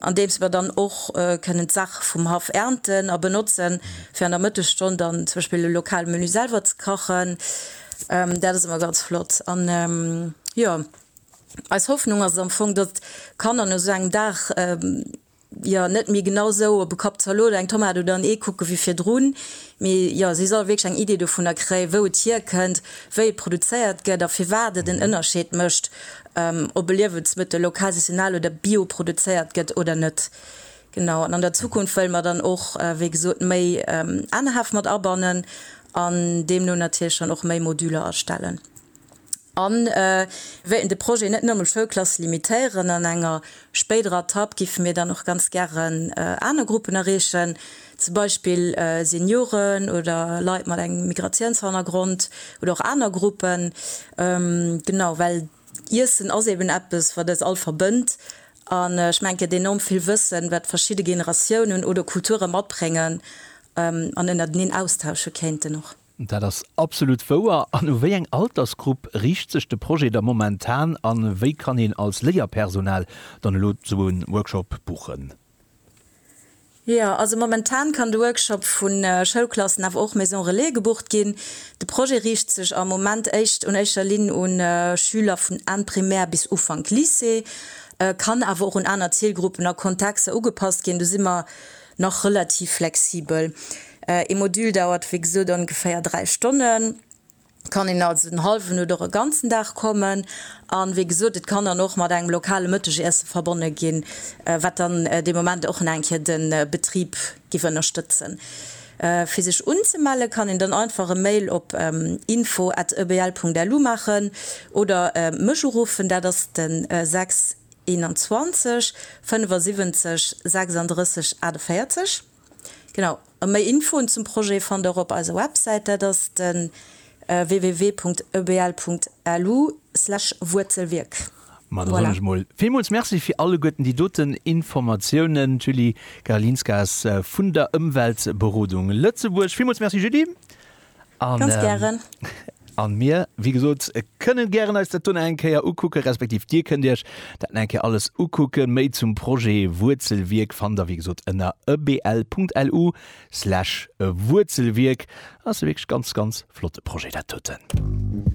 andeems mer dann och kënnen d'Saache vum Haff ernten a benotzen, fir an der Mëttesstonn dann zum Beispill e lokale Menü selwer ze kachen. Dat ass ëmmer ganz flott. An, jo, eis Hoffnung ass et am Fong, datt d'Kanner no esou engem Dag, jo, net méi genau esou op e Kapp Zalot, eng Tomat oder en Ee kucke wéi virdrun, mee, jo, si solle wierklech eng Idee dovunner kréien, wou et hierkënnt, wéi et produzéiert gëtt a firwat et en Ënnerscheed mécht, ob e Liewensmëttel lokal, saisonal oder bio produzéiert gëtt oder net. Genau, an an der Zukunft wëlle mer dann och, wéi gesot, méi Anerhäff mat abannen an deemno natierlech dann och méi Moduler erstellen. A mir wéilten de Projet net nëmme un Schoulklasse limitéieren. An enger spéiderer Etapp géife mir dann och ganz gären aner Gruppen erreechen. zum Beispill Senioren oder Leit mat engem Migratiounshannergrond oder och aner Gruppen, genau, well Iessen ass eben eppes, wat eis all verbënnt an ech mengen, et gëtt enorm vill Wëssen, wat verschidde Generatiounen oder Kulture matbréngen an ënnerteneen austausche kéinten och. Dat ass absolut wouer. An u wéi eng Altersgrupp riicht sech de Projet da momentan a wéi kann een als Léierpersonal dann elo esou e Workshop buchen? Jo, also momentan kann de Workshop vu Schoulklassen awer och Maison Relais gebucht ginn. De Projet riicht sech am Moment éischt un éischer Linn u Schüler vun Enn Primär bis Ufank Lycée, kann awer och un aner Zilgruppen a Kontexter ugepasst ginn. Do si mer nach relativ flexibel. Ee Modul dauert wéi gesot ongeféier dräi Stonnen. kann een also den hallwen oder e ganzen Dag kommen. An wéi gesot, et kann dann och mat engem lokale Mëttegiessen verbonne ginn, wat dann dee Moment och nach eng Kéier de Betrib giff ënnerstëtzen. Fir sech unzemellen, kann een dann einfach e Mail op info at ebl.lu maachen oder mech uruffen, dat ass de 6 21 75 36 48. Genau, a méi Infoen zum Projet fannt der op eiser Websäit, dat ass de www.ebl.lu/wuerzelwierk. Ma da soen ech emol villmools Merci fir alleguerten déi doten Informatiounen. D'Julie Garalinskas vun der Ëmweltberodung Lëtzebuerg. Villmools Merci Julie. Ganz gären. An mir, wéi gesot, kënnen gären eis dat dunn eng Kéier ukucken, respektiv dir kënnt iech dat nach eng Kéier alles ukucken. Méi zum Projet Wuerzelwierk fannt der, wéi gesot, ënner ebl.lu slash wuerzelwierk. Ass e wierklech ganz, ganz flotte Projet dat doten.